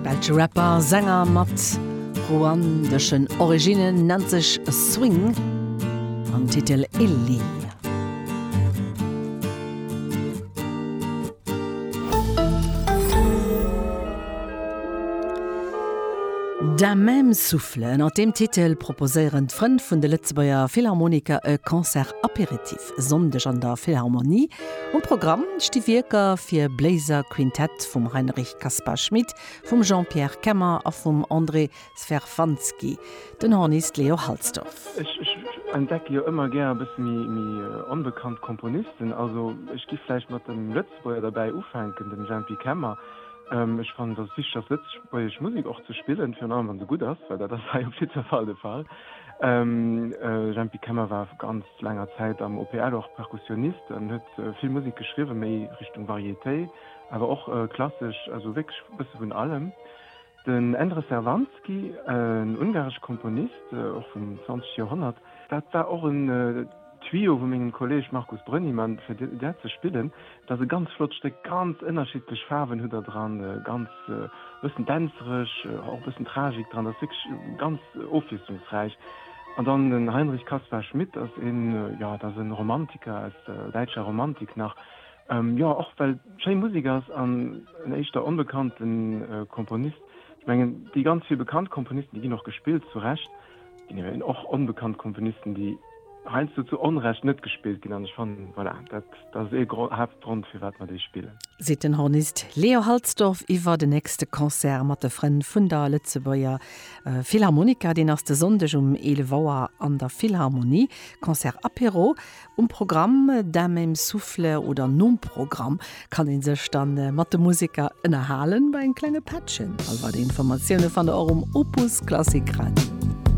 Belsche Rapper a Sänger mat ruandeschen Originnen, nennt sech Swing an Titel Illy. Da même souffle, ënnert deem Titel proposéieren d'Frënn vun de Lëtzebuerger Philharmoniker e Concert-Apéritif. Fest, Sonndeg an der Philharmonie. Um Programm sti Wierker fir Bléiser Quintett vum Heinrich Caspar Schmit, vum Jean-Pierre Kemmer a vum André Sverfanski. Den Hornist Leo Halsdorf. Ech entdecke jo ëmmer gär e bësse méi onbekannt Komponisten. Also ech gi vläicht mat engem Lëtzebuerger derbäi ufänken, dem Jempi Kemmer. Ech fannen, et ass wichteg, ass lëtzebuergesch Musek och ze spillen, virun allem, wa se gutt ass, well dat ass hei op jiddwer Fall de Fall. Jempi Kemmer war ganz. Laanger Zäit am OPL och Perkussionist an huet vill Musek geschriwwen, méi Richtung Variété, awer och klassesch, also wierklech e bësse vun allem. Den Endre Szervánszky, en ungaresche Komponist, och vum 20 Joerhonnert. Dat war och en Tuyau vu mengem Kolleeg Markus Brönnimann, fir dat ze spillen. Dat ass e ganz flott Stéck, ganz ënnerschiddlech Faarwen hutt Der dran, ganz e bëssen dänzereg, och e bëssen Tragik dran, dat ass wierklech ganz ofwiesslungsräich. An dann den Heinrich Caspar Schmit ass een, jo, dat ass e Romantiker aus der däitscher Romantik nach, jo, och well schéi Musek ass an en éischter onbekannte Komponist. Ech mengen, déi ganz vill bekannt Komponisten, déi ginn och gespillt, zu Recht. Genee, och onbekannt Komponisten, déi heiansdo zu Onrecht net gespillt ginn. An ech fannen, voilà, dat ass ee Gro Haaptgrond, firwat mer déi spillen. Seet den Hornist Leo Halsdorf iwwer den nächste Concert mat de Frënn vun der Lëtzebuerger Philharmoniker. Deen ass de Sonndeg um 11 Auer an der Philharmonie. Concert Apéro um Programm, d'un même souffle oder nom Programm kann ee sech da mat de Museker ënnerhalen bei engem klenge Pättchen. All weider Informatioune fannt der och um Opus Klassik Radio.